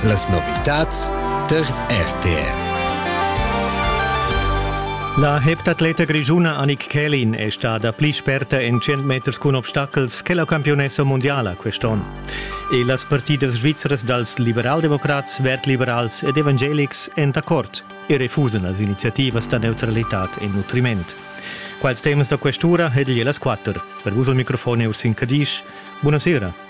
Las novitads tar RTR. La heptatleta grischuna Annik Kählin è stada pli sperta en 100 meters cun obstacels che la campiunessa mundiala quest'onn. E las partidas svizras dals liberaldemocrats, vertliberals ed evangelics èn d'accord e refusan las iniziativas da neutralitad e nutriment. Quals temas da questura ed igl las quatter. Per vus al microfon è Ursin Cadisch. Buonasera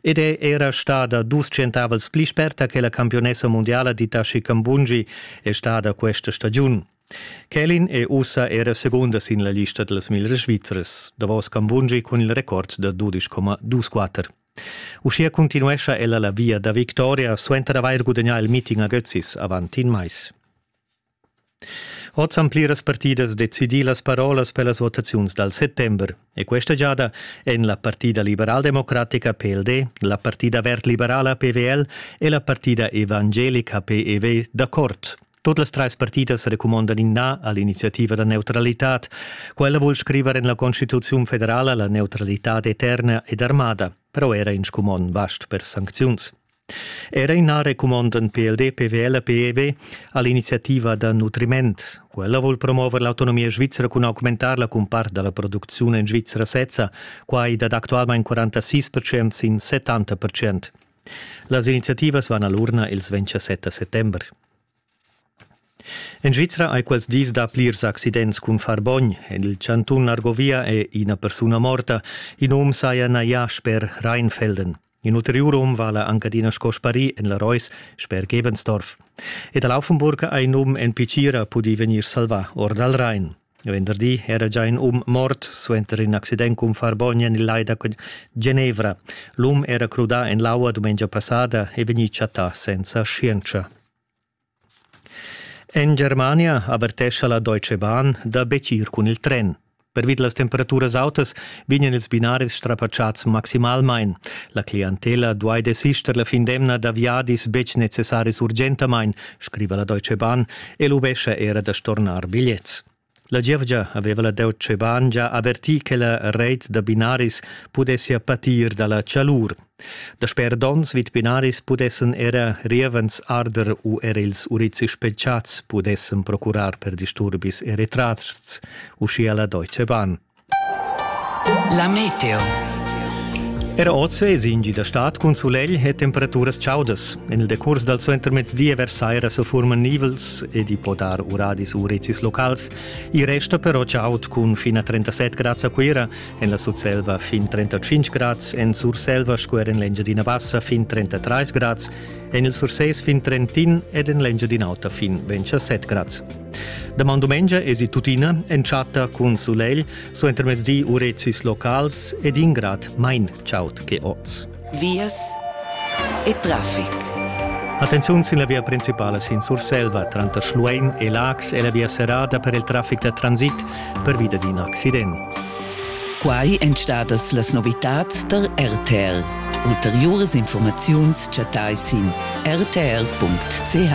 ed è era stada dus centavels pli sperta che la campionessa mundiala d'Itachi Kambungi è stada questa stagiun. Kelin è ussa era segunda sin la lista dals mille Svizers, davos Kambungi cun il record da 12,24. Uschia continuescha ella la via da victoria suenter avair gudagnà il meeting a Götzis avant in mais. Oz han pliras partidas decidì las parolas per las votaziuns dal settember e questa giada èn la partida liberaldemocratica PLD, la partida verd-liberala PVL e la partida evangelica PEV d'accord. Tut las trais partidas recumondan in na a l'iniziativa da neutralitad. Quella vul scriver en la Constituziun federala la neutralitad eterna ed armada, però era in scumon vast per sancziuns. Era ina recumondan PLD PVL PEV all'iniziativa da nutriment. Quella vuol promuover l'autonomia svizra cun augmentarla cun part dalla producziun en Svizra sezza, quai dat actualmain 46% sin 70%. Las iniziativas van all'urna ils 27 settember. En Svizra hai quels dis da plirs accidents cun far bogn. En il chantun Argovia è ina persuna morta. In um saja najà sper Rheinfelden. In ulteriur um vala anc adina sco sparì en la Reus sper Gebensdorf. E da Laufenburg ha in um en Picira pudì vegnir salvà or dal Rhein. Venderdi era già in um mort suenter in accident cun Farbogna nel lai da Genevra. L'um era crudà en l'aua dumengia passada e vegnì chattà senza scienza. En Germania avertescha la Deutsche Bahn da betg ir cun il tren. Pervid las temperaturas autas vegnan ils binaris strapatschats maximalmain. La clientela duai desister la fin d'emna da viadis betg necessaris urgentamain, scriva la Deutsche Bahn e lubescha era da stornar bigliets. La gievgia haveva la deuet Scheban gia averti che la reit da binaris pudessia patir dalla chalur. Dasper donns vid binaris pudessen era rievens arder u er ils urizzi spelchats pudessen procurar per disturbis e retrasts, uschia la Deutsche Bahn. La meteo. Era oz vesi in gi da stad cun sulegl e temperaturas chaudas. En il decurs dal suentermezdi e vers saira se furman nivels ed i po dar uradis u rezis locals. I resta però chaud cun fin a 37 grads a Cuira, en la Sutselva fin 35 grads, en Surselva sco er en l'Engiadina Bassa fin 33 grads, en il Sursés fin Trentin ed en l'Engiadin'Auta fin 27 grads. Daman dumengia esi tuttina entschatta cun sulegl, so intermezdi urezis locals ed ingrad mein chaut che oz. Vias e traffic. Attenziun sin la via principala sin Surselva tranter Schluein e Lax e la via serrada per il traffic da transit per via d'in accident. Quai èn stadas las novitads tar RTL. Ulteriuras informaziuns chattai sin rtl.ch.